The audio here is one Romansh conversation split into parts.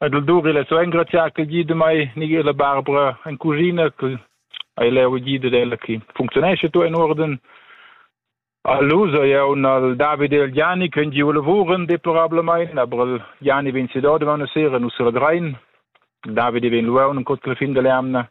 Ed il Duri l'ha so engrazià ch'el gida mei, Michela Barbara en cuschina, che hai leu gida ella che funcziunescha tu in uorden. All'uso jeu al David e al Gianni che giu lavuran deplorablamein, aber il Gianni vegn sedau daman a sera, nus regrein. David vegn luaun en cotgla fin dall'jamna.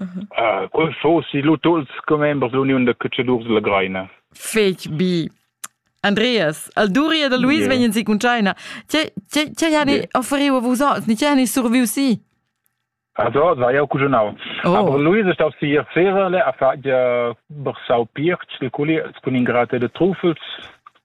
uh, fosi lu tuts commembers l'uniun da catschadurs della Greina. Fetg bi. Andreas, al Duria da Luis yeah. vegnan si cun China. Ce ce ce yani yeah. offeriu vos oz? Ni ce yani surviu si? Also, war ja auch gut genau. Oh. Aber Luis ist auf sie sehr alle, er fährt ja Bersau Pirch, il culi, kun ingrate de Trufels,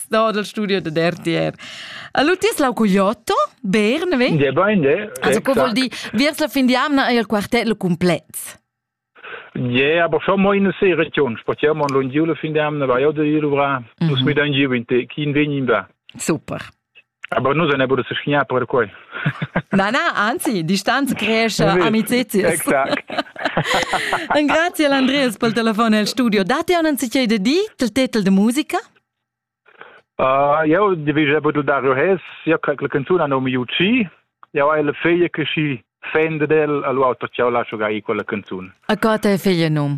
sto dal studio de RTR. Allora ti es lau cogliotto? Bern, vedi? De bain, de. Also, che vuol dire, viers la fin di anna è il quartetto completo. Ja, aber schon mal in der Seeregion. Spazieren wir an Lundiole, finde ich, weil auch der Iruvra. Mhm. Muss mit einem Giu in Tekin wenig war. Super. Aber nus ne bude se schnia per quei. Na na, anzi, distanz cresce amicizias. Exact. Grazie all'Andreas pel telefono al studio. Date un anziché de di il titel de musica? Uh, eu devi pudel dar hes, io quella canzone non mi uci. Eu hai la figlia che si fende del, allora io lascio gai quella canzone. A cosa è figlia num?